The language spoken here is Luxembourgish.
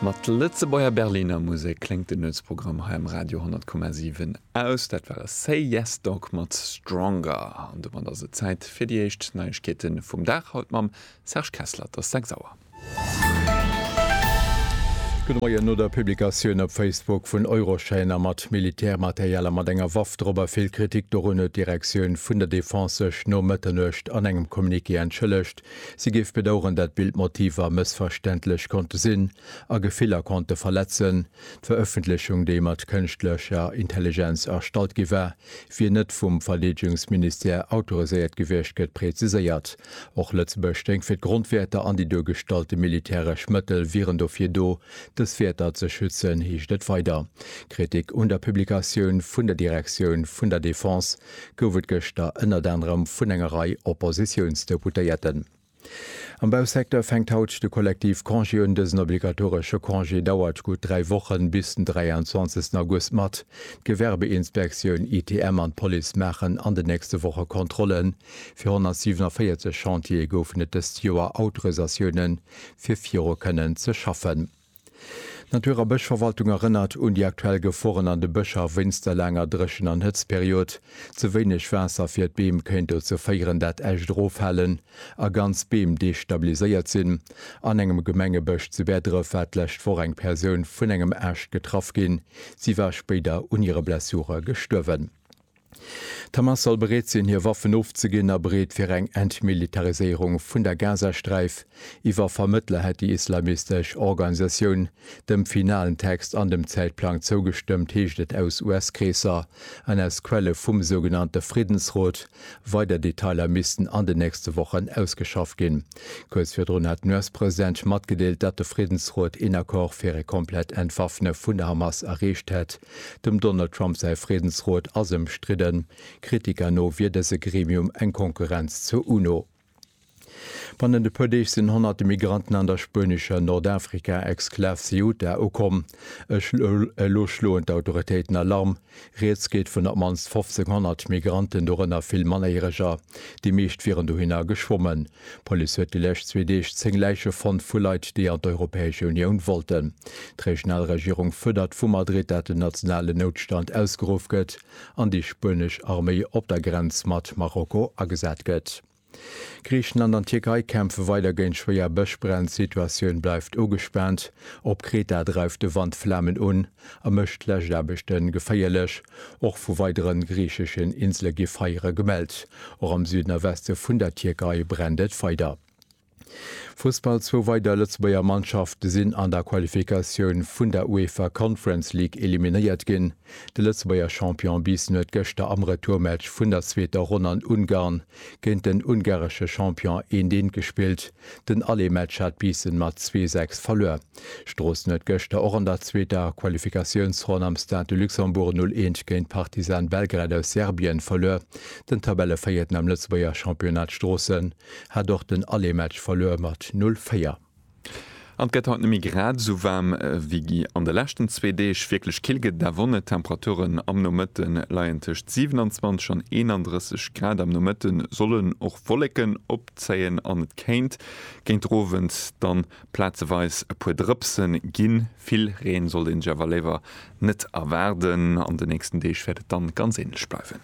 Mat Lëtzebuerger Berliner Musek kléngt den Nuetsprogramm hei am Radio 10,7 aus. Dat war Say Yes Dog mat Stronger. An domat ass et Zäit fir déi éischt Neiegkeete vum Dag, haut mam Serge Kessler. Et ass 6 Auer. Gudde Moien. No der Publikatioun op Facebook vun Euroshaner mat Militärmaterial a mat enger Waff drop a vill Kritik dorun huet d'Direktioun vun der Defense sech no Mëtternuecht an engem Communiqué entschëllegt, Si géif bedaueren, dat Bildmotiver mëssverständlech konnte sinn a Gefiller konnte verletzen. D'Verëffentlechung, déi mat kënschtlecher Intelligenz erstallt gi war, wier net vum Verdeedegungsministère autoriséiert gewiescht, gëtt präziséiert. Och Lëtzebuerg stéing fir d'Grondwäerter an déi duergestallte militäresch Mëttel wieren dofir do, dës Wäerter ze schützen, heescht et weider. Kritik un der Publikatioun vun der Direktioun vun der Defense gouf et gëschter ënnert anerem vun enger Rei Oppositiounsdeputéierten. Am Bausecteur fänkt haut de Kollektiv Congé un. Dësen obligatoresche Congé dauert gutt dräi Wochen, bis den 23 August mat. D'Gewerbeinspektioun, ITM an d'Police maachen an den nächste Woche Kontrollen. Fir 147 Chantiere goufen et dëst Joer Autorisatioune fir viru kënnen ze schaffen. D'Natur a Bëschverwaltung erënnert un déi aktuell Geforen an de Bëscher wéinst der laanger Dréchen an Hëtztperiod. Ze wéineg Waasser fir d'Beem kéint dozou féieren, dat Äscht eroffalen a ganz Beem destabiliséiert sinn. An engem Gemengebësch zu Bäerdref war d'lescht Woch eng Persoun vun engem Aascht getraff ginn. Si war spéider un hire Blessure gestuerwen. D'Hamas soll bereet sinn, hir Waffen ofzeginn a bereet fir eng Entmilitariséierung vun der Gazasträif. Iwwer Vermëttler hätt déi islamistesch Organisatioun dem finalen Text an dem Zäitplang zougestëmmt, heescht et aus US-Kreesser an aus Quelle vum sougenannte Friddensrot. Weider Detailer missten an den nächste Wochen ausgeschafft ginn. Kuerz virdrun hat den US-President matgedeelt, datt de Friddensrot een Accord fir e komplett Entwaffne vun der Hamas erreecht hätt. Dem Donald Trump säi Friedensrot ass ëmstridden. Kritiker no wier dëse Gremium eng Konkurrenz zur UNO. Bannent e puer Deeg sinn honnerte Migranten an der spuenescher Nordafrika-Exklav Ceuta ukomm. Elo schloen d'Autoritéiten Alarm. Rieds geet vun op d'mannst 1.500 Migranten, dorënner vill Mannerjäreger. Déi meescht wieren dohinner geschwommen. D'Police huet déi lescht zwee Deeg 10 Läiche fonnt vu Leit, déi an d'Europäesche Unioun wollten. D'regional Regierung fuerdert vu Madrid, dat en nationalen Noutstand ausgeruff gëtt an déi spuenesch Arméi op der Grenz mat Marokko agesat gëtt. Griichenland an d'Tierkei kämpfe weider géint schwéier Bëschbränn, d'Situatioun bleift ugespaant. Op Kreta dreift de Wand Flamen un. a mécht d'Läschaarbechte geféierlech. Och vu weidere griicheschen Insele gi Feiere gemellt. Och am Süden a Weste vun der Tierkei brennt et weider. Fussball, Zwou weider Lëtzebuerger Mannschafte sinn an der Qualifikatioun vun der UEFA Conference League eliminéiert ginn. De Lëtzebuerger Champion Biissen huet gëschter am Retourmatch vun der zweeter Ronn an Ungarn géint den ungaresche Champion Éndeent gespillt. Den Aller Match hat Biissen mat 2, 6 verluer. Stroossen huet gëschter och an der zweeter Qualifikatiounsronn am Stade de Luxembourg 0, 1 géint Partizan Belgrad aus Serbien verluer. Den Tabellevéierten am Lëtzebuerger Championnat Stroossen hat och den Aller Match verluer mat 0, 4. An et gëtt haut net méi grad esou waarm wéi an de leschten zwee Deeg. Wierklech kill gëtt et awer och net. D'Temperaturen am Nomëtte leien tëscht 27 an 31 Grad. Am Nomëtte sollen och Wolleken opzéien an et kéint géint den Owend dann plazeweis e puer Drëpse ginn. Vill Reen sollt een sech awer léiwer net erwaarden. An de nächsten Deeg wäert et dann ganz änlech bleiwen.